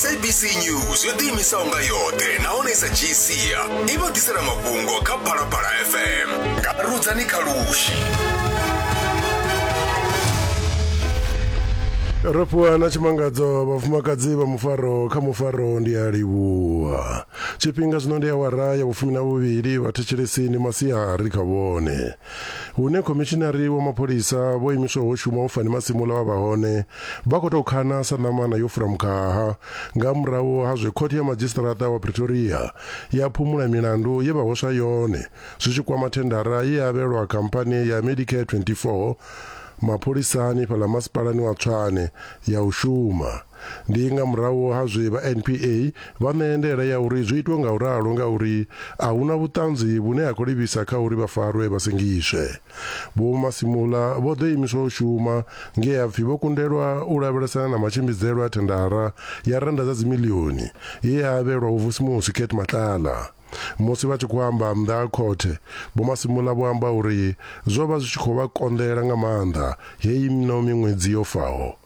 sabc news yo ḓiimisaho nga yoṱhe nahone i sa dzhii sia i vha ḓisela mafhungo kha phalaphala fm nga rudzani kha lushi ro fhiwa na tshimangadzo vhafumakadzi vha mufaro kha mufaro ndi a livhuwa tshifhinga zwino ndi awara ya vhufumi na vhuvhili vhathetshelesi ndi masiari kha vhone hune khomishinari wa mapholisa vho imiswa ho shuma u fani masimula vha vha hone vha khou tou khana sa ṋamana yo fura mukhaha nga murahu ha zwe khothe ya madzhisiṱaraṱa wa pretoria ya phumula milandu ye vha hweswa yone zwi tshi kwama thendara ye ya avhelwa khamphani ya medicare 24 mapholisani fhaḽa masipalani wa tshwane ya u shuma Ndi nga murahu ha zwe vha NPA vha ṋea ndaela ya uri zwi itwe nga u ralo ngauri a hu na vhuṱanzi vhune ha khou livhisa kha uri vha farwe vha sengiswe. Vho Masimula vho ḓo imiswa u shuma nge ha pfi vho kundelwa u lavhelesana na matshimbidzelwe a thendara ya rennda dza dzimilioni ye ya avhelwa Vhufusimusi Kate Matlala. Musi vha tshi khou amba nnḓa ha khothe, Vho Masimula vho amba uri zwo vha zwi tshi khou vha konḓela nga maanḓa heino miṅwedzi yo faho.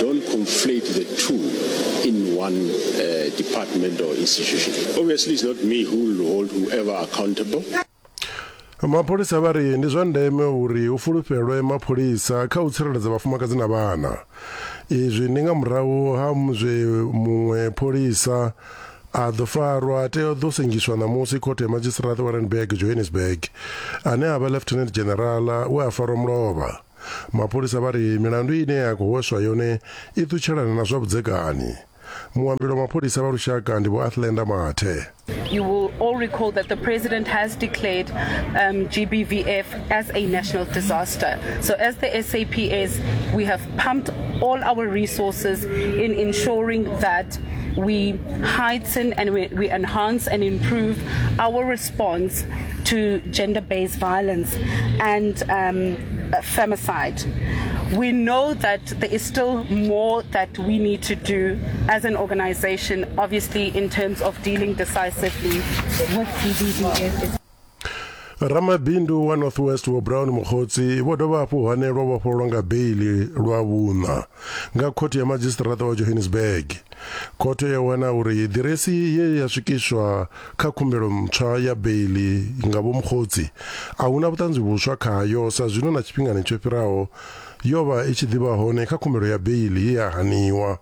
Don't conflate the two in one uh, department or institution. Obviously, it's not me who will hold whoever accountable. mapholisa vha ri ndi zwa ndeme uri hu fulufhelwe mapholisa kha u tsireledza vhafumakadzi na vhana izwi ndi nga murahu ha zwe muṅwe pholisa a ḓo farwa tea ḓo sengiswa ṋamusi khothe ya madzhisiṱiraṱa wa randburg johannesburg ane a vha lieutenant general we a farwa mulovha Mapholisa vha ri milandu ine ya khou hweswa yone i ṱutshelana na zwa vhudzekani. Muambeli wa mapholisa vha lushaka ndi Vho Athlenda Mathe. You will all recall that the president has declared um, GBVF as a national disaster. So, as the SAPS, we have pumped all our resources in ensuring that we heighten and we, we enhance and improve our response. response to gender based violence and um, femicide. We know that there is still more that we need to do as an organization, obviously, in terms of dealing decisively with GBVF. ramabindu wa northwest wa brown mogotsi vho dovha hafhu hane lwa vhofhololwa nga beili lwa vhuṋa nga khothe ya madzhisiṱiraṱa wa johannesburg Khothe yo wana uri ḓiresi ye ya swikiswa kha khumbelo ntswa ya beiḽi nga Vho Mokgotsi a hu na vhuṱanzi vhuswa khayo sa zwino na tshifhingani tsho fhiraho yo vha i tshi ḓi vha hone kha khumbelo ya beiḽi ye ya haniwa.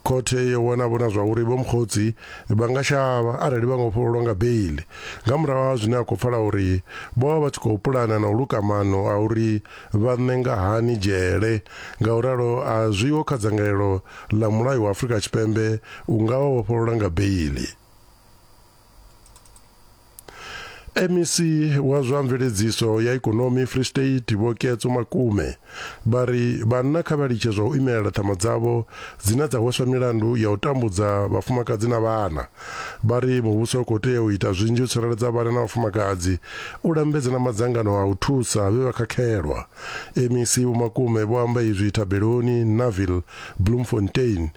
Khothe yo wana vhona zwa uri Vho Mokgotsi vha nga shavha arali vha nga vhofhololwa nga beiḽi nga murahu ha zwine a khou pfala uri vho vha vha tshi khou pulana na u luka maano a uri vha ṋenga hani dzhele. Ngauralo, a zwiho kha dzangalelo ḽa mulayo wa Afrika Tshipembe u nga vha vhofholola nga beiḽi. MEC wa zwa mveledziso ya ikonomi Free State Vho Ketso Makume vha ri vhanna kha vha litshe zwa u imelela ṱhama dzavho dzine dza hweswa milandu ya u tambudza vhafumakadzi na vhana. Vha ri muvhuso u khou tea u ita zwinzhi u tsireledza vhana na vhafumakadzi, u lambedza na madzangano a u thusa vhe vha khakhelwa. MEC Vho Makume vho amba izwi thabeloni Naville, Bloemfontein,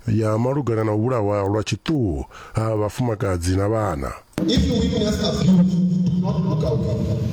ya malugana na u vhulahwa lwa tshiṱuhu ha vhafumakadzi na vhana. If you witness abuse, do not look away.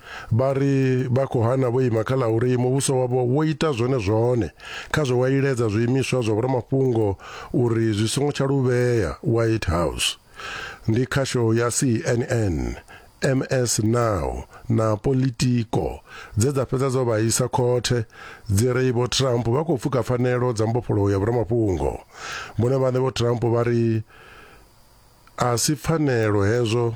Vha ri vha khou hana vho ima kha ḽa uri muvhuso wavho wo ita zwone zwone kha zwe wa iledza zwiimiswa zwa vhoramafhungo uri zwi songo tsha luvhea White House. Ndi khasho ya CNN, MS Now na Politico dze dza fhedza dzo vha isa khothe dzi ri Vho Trump vha khou pfuka pfanelo dza mbofholowo ya vhoramafhungo. Vhone vhaṋe Vho Trump vha ri a si pfanelo hezwo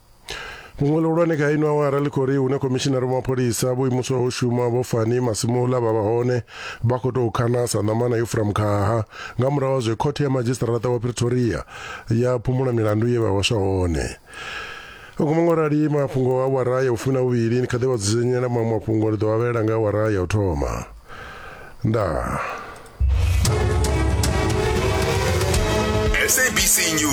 muṅwe luhulwane kha ino awara ḽi khou ri hune khomishinari wa mapholisa vho imuswaho u shuma vho fani masimula vha vha hone vha khou tou khana sa ṋamana yo fura mukhaha nga murahu ha zwe khothe ya madzhisiṱaraṱa wa pretoria ya phumula milandu ye vha hwaswa hone uku maṅwe arali mafhungo a wara ya vhufumi na vhuvhili ni kha ḓi vha dzudzanyela maṅwe mafhungo ndi ḓo vha vhela nga awara ya u thoma ndaa